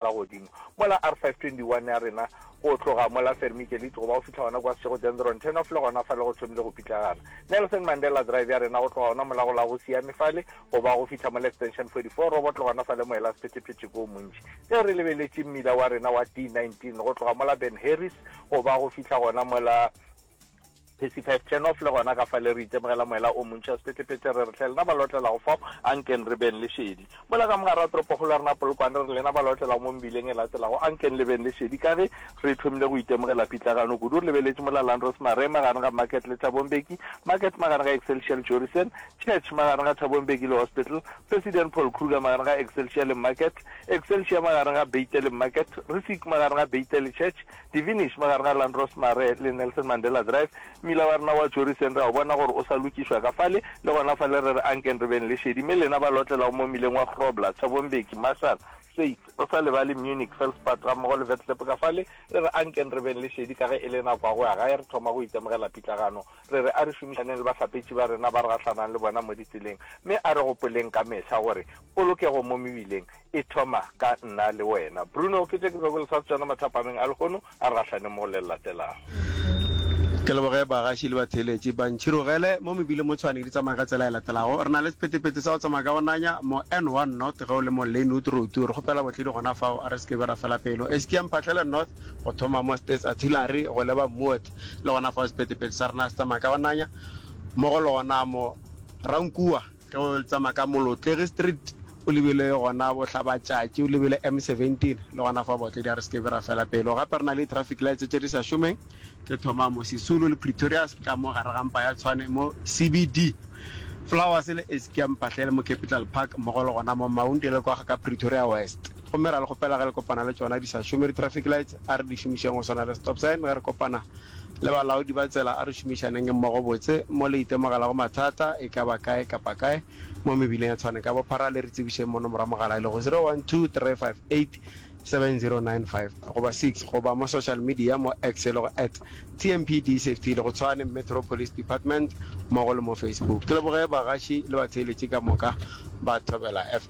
ka godimo mola R521 ya rena go tloga mola Vermikelite go ba go fihla gona kwa Seshego Dendron Turnoff le gona fale go thomile go pitlagana Nelson Mandela Drive ya rena go tloga gona mola go la go Siame fale go ba go fihla mola Extension 44 Robot le gona fale moela Sephethephethe ko montši ge re lebeletše mmila wa rena wa D19 go tloga mola Ben Harris go ba go fihla gona mola Percy Five Turnoff le gona ka fale re itemogela moela o montši wa sepetlepete re re hle lena ba lotlelago fao a nkeng re beng le šedi mola ka mogare wa toropokgolo ya rena Polokwane re re lena ba lotlelago mo mebileng e latelago a nkeng le beng le šedi ka ge re thomile go itemogela pitlagano kudu re lebeletše mola Landros Mare magareng ga Market le Thabong Beki Market magareng ga Excelsior le Jorisen Church magareng ga Thabong Beki le Hospital President Paul Kruger magareng ga Excelsior le Market Excelsior magareng ga Beitel le Market Risik magareng ga Beitel le Church Divinish, mo gare ga Landros Mare le Nelson Mandela Drive, mmila wa rena wa Joriseng re a o bona gore o sa lokišwa ka fale, le gona fale re re ankeng re beng le šedi, mme lena ba lotlelago mo mmileng wa Grobler, Thabo Mbeki, Marshall, States, re sa lebale Munich, Felspad, gammogo le Vetlklep ka fale, re re ankeng re beng le šedi ka ge e le nako ya go ya gae, re thoma go itemogela pitlagano, re re a re šomišaneng le bahlapetši ba rena ba re gahlanang le bona mo ditseleng, mme a re gopoleng ka mehla gore polokego mo mebileng E thoma ka nna le wena. Bruno, ke tše ke bego le sa tšona mathapameng a lehono a re gahlaneng mo le latelago. Ke leboge bagaši le batheeletši. Ba ntšhirogele mo mebileng mo Tshwane di tsamaye ka tsela e latelago. Re na le sephetephete sa go tsamaya ka go nanya mo N1 North ge o le mo Lynwood Road. Re kgopela botledi gona fao a re se ke be ra fela pelo. Estia Mphahlele North go thoma mo States Artillery go leba Moot. Le gona fao sephetephete sa rena se tsamaya ka go nanya mo go lona mo Rankuwa. Ge o tsamaya ka Molotlegi Street o lebile gona Bohlabatšatši, o lebile M17, le gona fa Bootledi a re se ke be ra fela pelo. Gape re na le di-traffic lights tše di sa šomeng tše thomamo Sisulu le Pretoria Street ka mo gare ga mpa ya Tshwane mo CBD, Flowers le Eskia Mphahlele mo Capital Park mmogo le gona mo Maunde le kwa ga ka Pretoria West. Gomme ra le kgopela ge le kopana le tšona di sa šome di-traffic lights, a re di šomišeng go swana le stop sign. Ge re kopana le balaodi ba tsela, a re šomišaneng mmogo botse. Mo le itemogelago mathata, e ka ba kae kapa kae mo mebileng e tshwaneng ka bophara, le re tsebišeng mono morwa mogala e lego zero one two three five eight seven zero nine five goba six goba mo social media mo X e lego at TMPD Safety le go Tshwane Metro Police Department mmogo le mo Facebook. Ke leboge bagaši le batheeletši ka moka ba Thobela FM.